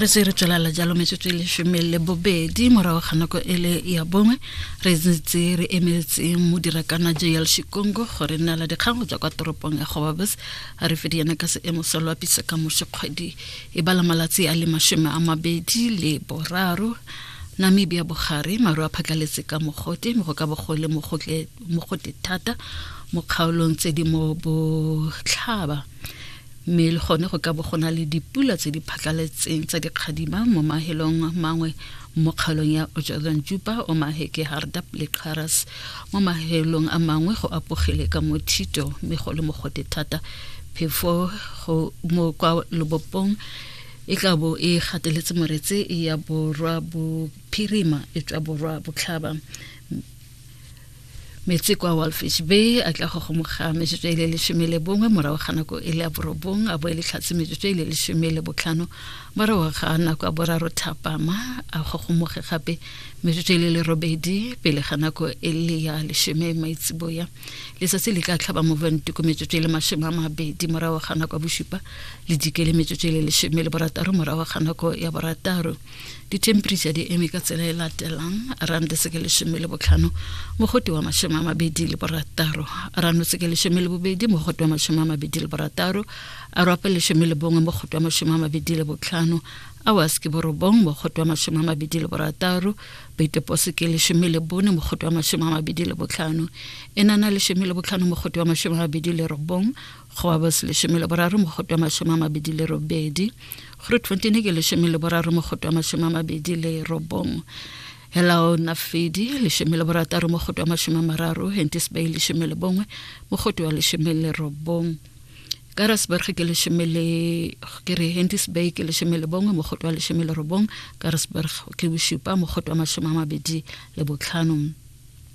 re se re tswelala jalo metsotso e lesome le bobedi morago ga nako e le ya bongwe re ntse re emetseng modirakana jl shikongo gore nna la dikgang go tswa kwa toropong ya gobabes a re fedi yena ka seemo sa loapisa ka mosekgwedi e bala malatsi a le masome a mabedi le boraro namibia bogare maru a phatlhaletse ka mogote mo go ka bogole mogote thata mo kgaolong tse di mo botlhaba mme le gone go ka bo go na le dipula tse di phatlaletseng tsa dikgadima mo mahelong mangwe mo kgaolong ya ojalong juba o maheke hardap le xaras mo mahelong a mangwe go apogele ka mothito mme go le mogote thata phefo go mo kwa lobopong e tla bo e gateletse moretse ya borwa bophirima e tswa borwa botlhaba metsi kwa walfish bay a tla go gomoga metsotso e le lesome le bongwe morago ga nako e le ya borobong a bo e le tlhatse metsotso e le lesome le botlhano morago ga nako ya boraro thapama a gogomoge gape metsotso e le le robedi pele ga nako e le ya lesome maitseboya letsatsi le tla tlhaba moventiko metsotso e le masome a mabedi morago ga nako ya bosupa le dikele metsotso e le lesome le borataro morago ga nako ya borataro ditemperature di eme ka tsela e latelang rand seke lesome le botlhano mogote wa masome a mabedi le borataro rano seke lesome le bobedi mogote wa masome a mabedi le borataro arope lesome le bongwe mogote wa masome a mabedi le botlhano awas ke borobong mogote wa masome a mabedi le borataro beitepose ke lesome le bone mogote wa masome a mabedi le botlhano enana lesome le botlhano mogote wa masome a mabedi le robong go ba bose lesome le boraro mogoto wa masome a mabedi le robedi gore twentyne ke lesome le boraro mogoto wa masome a mabedi le robong helao nafedi lesome le borataro mogoto wa masome a mararo hentis bay lesome le bongwe mogoto wa lesome le robong karasburg ke lesome le ke re hentis bay ke lesome le bongwe mogoto wa lesome le robong karasburg ke bosupa mogoto wa masome a mabedi le botlhanong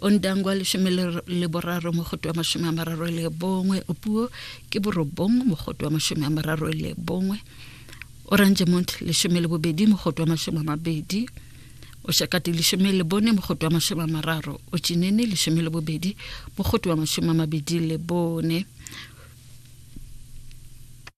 o ntangwa lesome le boraro mogoto wa masome a mararo le bongwe o puo ke borobong mogoto wa masome a mararo le bongwe orange mont lesome le bobedi mogoto wa masome a mabedi o shakati lesome le bone mogoto wa masome a mararo o chinene lesome le bobedi mogoto wa masome a mabedi le bone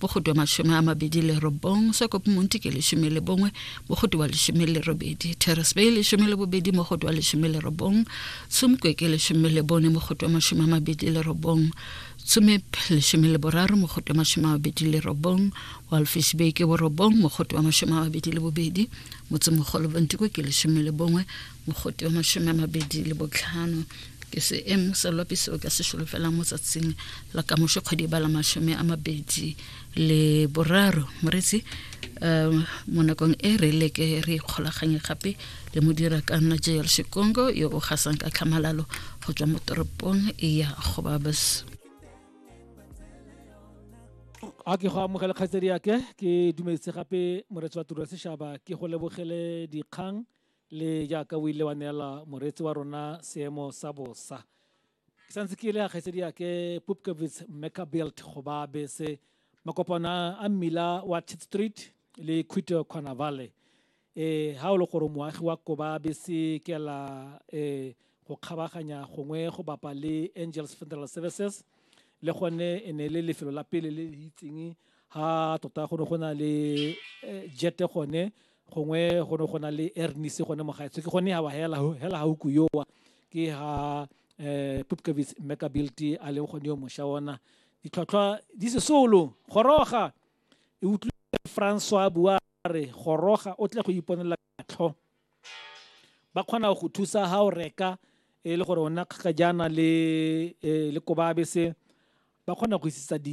bogodu wa mashome a mabedi le robong sokopo monti ke leshome le bongwe bogodu wa leshome le robedi terrace bay leshome le bobedi mogodu wa leshome le robong tsumkwe ke leshome le bone mogodu wa mashome a mabedi le robong tsumep leshome le boraro mogodu wa mashome a mabedi le robong walfish bay ke borobong mogodu wa mashome a mabedi le bobedi motsemogolo bontiko ke leshome le bongwe mogote wa mashome a mabedi le botlhano ke seemo sa loapi seo ka se solofelang mo tsatsing la kamoso kgwedi e ba la mashome a mabedi le boraro moretsi um mo nakong e re leke re ikgolaganye gape le modira ka nna jl sekongo yo o gasang ka tlhamalalo go tswa mo toropong ya gobabas a ke go amogela kgaitsedi yake ke dumedise gape moretsi wa tiro ya setšhaba ke go lebogele dikgang le jaaka o ile wa neela moreetsi wa rona seemo sa bosa ke santse ke ile ya kgaitsedi yake pupkevits mecabelt go ba bese makopana a mmila wa tit street le quito kgona valley um ha o le gore moagi wa koba bese kela um go kgabaganya gongwe go bapa le angels federal services le gone e ne le lefelo la pele le le itseng ha tota go ne go na le jete gone gongwe go ne go na le ernise gone mo gaetsho ke gone wa hela hela hauku yowa ke ha um eh, pupkavits mekabilty a leng gone yo mosha ona ditlhwatlhwa di sesolo goroga e utlwile francois bua re goroga o tle go iponela tlho ba kgona go thusa ha o reka e le gore o nna kgakajana le eh, le kobabese ba kgona go isisa di